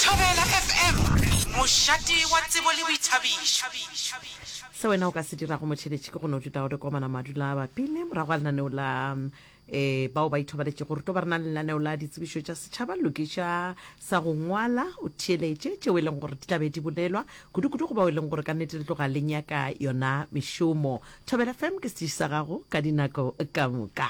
Thabela FM, mošate wa tsebo le boithabišo. Se wena o ka se dirago motheletši ke go no duta o re komana madula a bapile morago ga lenaneo la um bao ba ithobaletšego re tlo ba re na le lenaneo la ditsebišo tša setšhaba lokiša sa go ngwala o theeletše tšeo e leng gore di tla be di bolelwa kudu-kudu go bao e leng gore ka nnete le tloga le nyaka yona mešomo thobela fm ke setiši sa gago ka dinako ka moka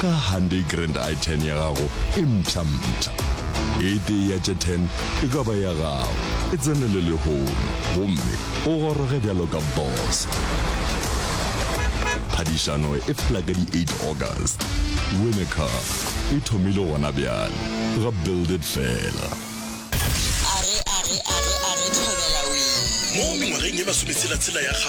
Ka Hyundai Grand i10 ya gago e mpsha-mpsha, e tee ya tše 10 e ka ba ya gago, e tsene le lehono gomme o goroge bjalo ka boss. Phadišano e fela ka di 8 August. Win a Car e thomile gona bjale ga Build It fela. Mo mengwageng ye masometshela-tshela ya gašo,